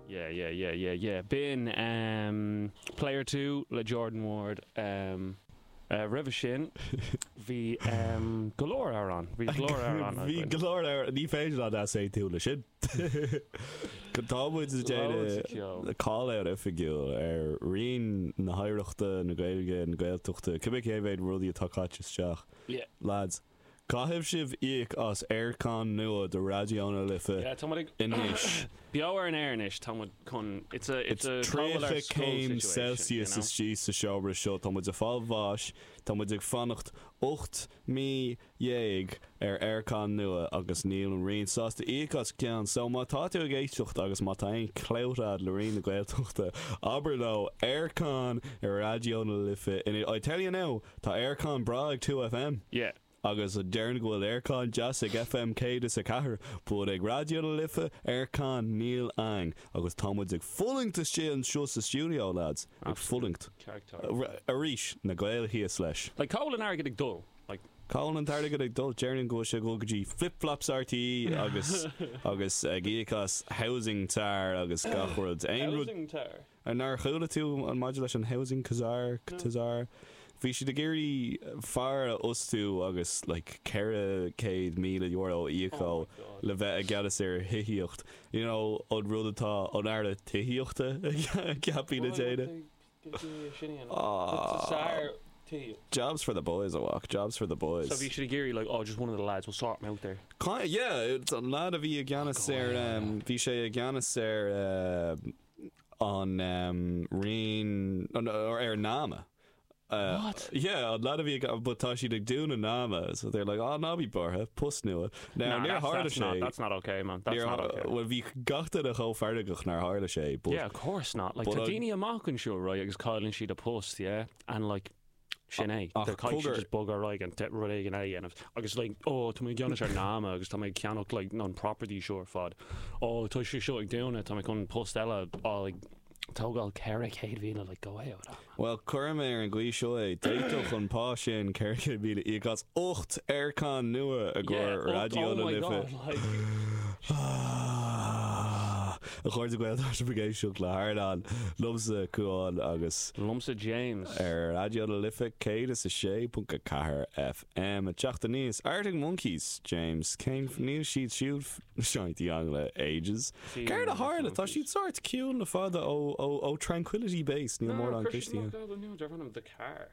Yeah yeah yeah yeah yeah B'in Player Two le Jordan Ward. Roimhe sin bhí go leor amhrán, bhí go leor amhrán againn. Bhí go leor amhrán, ní féidir leat easaontú leis sin. Tá muid ag déanamh call-out oifigiúil ar Roinn na hOidhreachta, na Gaeilge, na Gaeltachta. Cibé cé mhéad rudaí atá caite isteach lads. Caithfidh sibh íoc as aircon nua do Raidió na Life anois. Beo ar an aer anois, tá muid chun, it's a, it's a Taylor Swift school situation, you know. 30 céim Celsius istigh sa seomra seo, tá muid ag fáil bháis, tá muid ag fanacht ocht mí dhéag ar aircon nua agus níl an Roinn sásta íoc as ceann. So má tá tú ag éisteacht agus má tá aon clout a'd le Roinn na Gaeltachta, abair leo, aircon ar Raidió na Life anois, I tell you now, Tá aircon breá ag 2FM. Yeah. Agus déarfainn go bhfuil aircon deas ag FM 104, but ag Raidió na Life, aircon, níl ann. Agus tá muid ag fulaingt istigh anseo sa stiúideo, lads. Ag fulaingt. Absolutely. Arís, na Gaeil thíos leis. Like, cá bhfuil an airgead ag dul? Like. Cá bhfuil an t-airgead ag dul? Déarfainn go bhfuil sé ag dul go dtí Flip Flops RTÉ agus agus ag íoc as housing czar agus gach rud. Housing czar? Ah nár chuala tú an maidir leis an housing czar, czar? Bhí siad ag iarraidh fear a fhostú agus like ceithre céad míle euro a íoc dhó le bheith i gceannas ar thithíocht, you know an rud atá an tAire Tithíochta ceaptha a dhéanamh. Jobs for the boys a mhac, jobs for the boys. So bhí siad ag iarraidh like, oh just one of the lads, we'll sort him out there. Kinda, yeah, an lad a bhí i gceannas ar, bhí sé i gceannas ar, an raon, or ar an NAMA. What? Yeah, an lad a bhí ag, but tá siad ag dúnadh NAMA, so they're like, ah, ná bí buartha, post nua. Now, no, níor tharla sé. Not, that's not okay, man. That's not okay. Well, bhí gach duine chomh feargach nar tharla sé. But, yeah, of course not. Like, tá daoine amach anseo, right, agus cailleann siad a post, yeah? And, like, Sin é. Ach Tá caithfidh sé cogar. just bogadh ar aghaidh agus rud éigin eile a dhéanamh. Agus like ó tá mé i gceannas ar NAMA agus tá mé ag ceannach like an property seo ar fad. Ó tá sé seo ag dúnadh tá mé chun post eile a like tógáil ceithre chéad mhíle like go away outta that. Bhuel cuirfidh mé ar an gcaoi seo é, d'fhéadfadh an pá sin ceithre chéad míle íoc as ocht aircon nua a Yeah gcuir ocht Raidió oh na my Life. god like. A chairde Gael tá sibh ag éisteacht le Ardán liomsa, Cuán agus. Liomsa, James. Ar Raidió na Life 106.4 FM ag teacht aníos, Arctic Monkeys, James. Cén f, níl siad siúd f, Seen anything le ages. Céard a tharla? Tá siad sort ciúin le fada ó, ó, ó Tranquility Base, níl mórán cloiste againn. Dearbhaíonn siad amach go bhfuil an, the car.